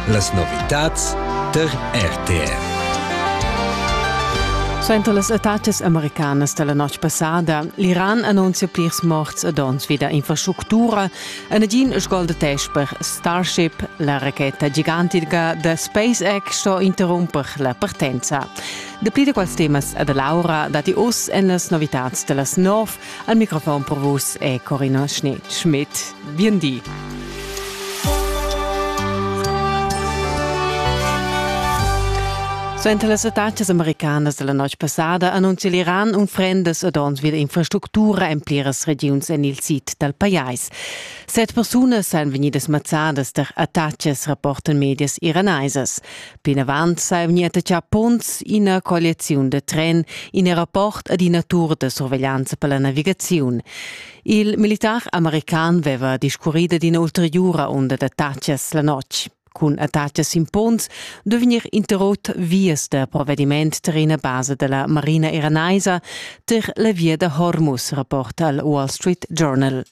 Las novitads tar RTR. Sento las etatas americanas della notg passada, l'Iran annuncia plirs morts e dons vida infrastructura e nagin sgoldeteix per Starship, la racheta gigantica da SpaceX sto interrumper la partenza. Dapli da quels temas e da Laura dati us en las novitads dellas nov. Al microfon per vus è Corina Schneid-Schmidt. Bien di. Suenter las attacas americanas della noc passada annunzia l'Iran unfrendas ed ons vid infrastructura en pliras regiuns en il sid dal pajais. Set persunas san vegnidas mazzadas tar attacas, rapportan medias iranaisas. Plinavant sa è vegnida tatgà punts ina colliaziun da tren, in rapport ad ina tur da surveglianza per la navigaziun. Il militar american aveva discurrì ad ina ulteriura unda d'attacas la notg. Cun attacas sin punts duvegnir interrott vias da provvediment tar ina basa da la marina iranaisa tar la via da Hormuz, rapporta al Wall Street Journal.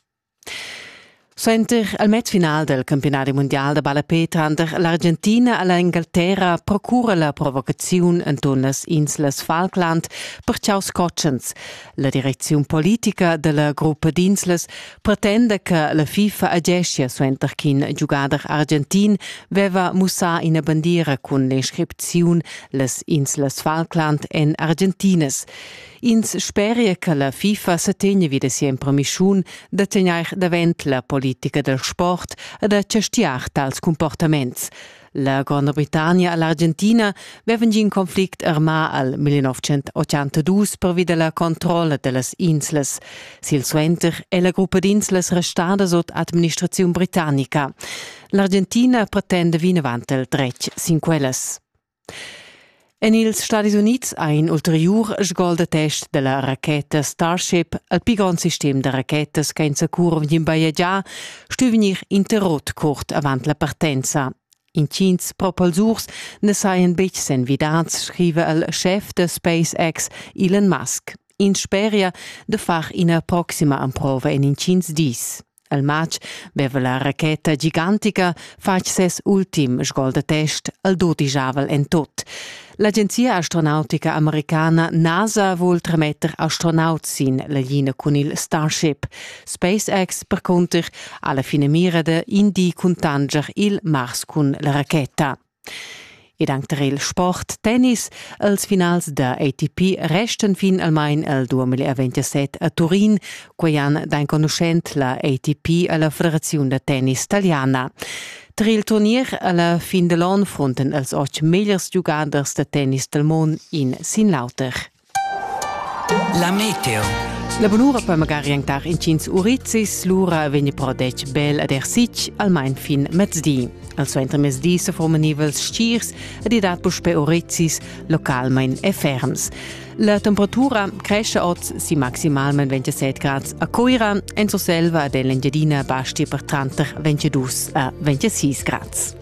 Suenter il matchfinal del campiunadi mundial da ballapè tranter l'Argentina e l'Engalterra procura la provocaziun enturn las inslas Falkland per chaus cotschens. La direcziun politica della gruppa d'inslas pretenda che la FIFA ageschia suenter ch'in giugader argentin veva mussà ina bandiera cun l'inscripziun las inslas Falkland en argentinas. Ins speria che la FIFA sa tegna vi da sia impremischun da tegnair davent la politica dal sport e da chastiar tals comportaments. La Gronda Britannia e l'Argentina vevan giu in conflict armà al 1982 pervi da la controlla da las inslas. Silsuenter è la gruppa d'inslas restada sut administraziun britannica. L'Argentina pretenda vinavant il dretg sin quellas. En ils Stadis Unids ha in ulteriur sgol da test da la racheta Starship, il pi grond sistem da rachetas che insacura vegn bajegià, stu vegnir interrot curt avant la partenza. Intgins propulsurs na sajan betg s'envidads, scriva il schef da SpaceX Elon Musk. Ins speria da far ina proxima emprova en intgins dis. El matg veva la racheta gigantica fatg ses ultim sgol da test al dudigiavel en tot. L'agenzia astronautica americana NASA vul trametter astronauts sin la linea cun il Starship. SpaceX percunter ha la finamira da indi cuntanger il Mars cun la racheta. Ed anc tar il sport, tennis. Els finals da ATP restan fin almain el 2027 a Turin. Quai han d'enconuschent la ATP e la Federaziun da tennis taliana. Tar il turnier alla fin da l'onn frontan els otg megliers giugaders da tennis dal mund in sin l'auter. La meteo. La bunura per magari antar intgins urizis, lura vegni però detg bel ad er sitg, almain fin mezdi. Al suenter mezdi se forman nivels stirs ed i dat puspè urizis localmain e ferms. La temperatura cresce oz si maximalment 27 grad a Coira, en Surselva ed en l'Engiadina basti per tranter 22 a 26 grad.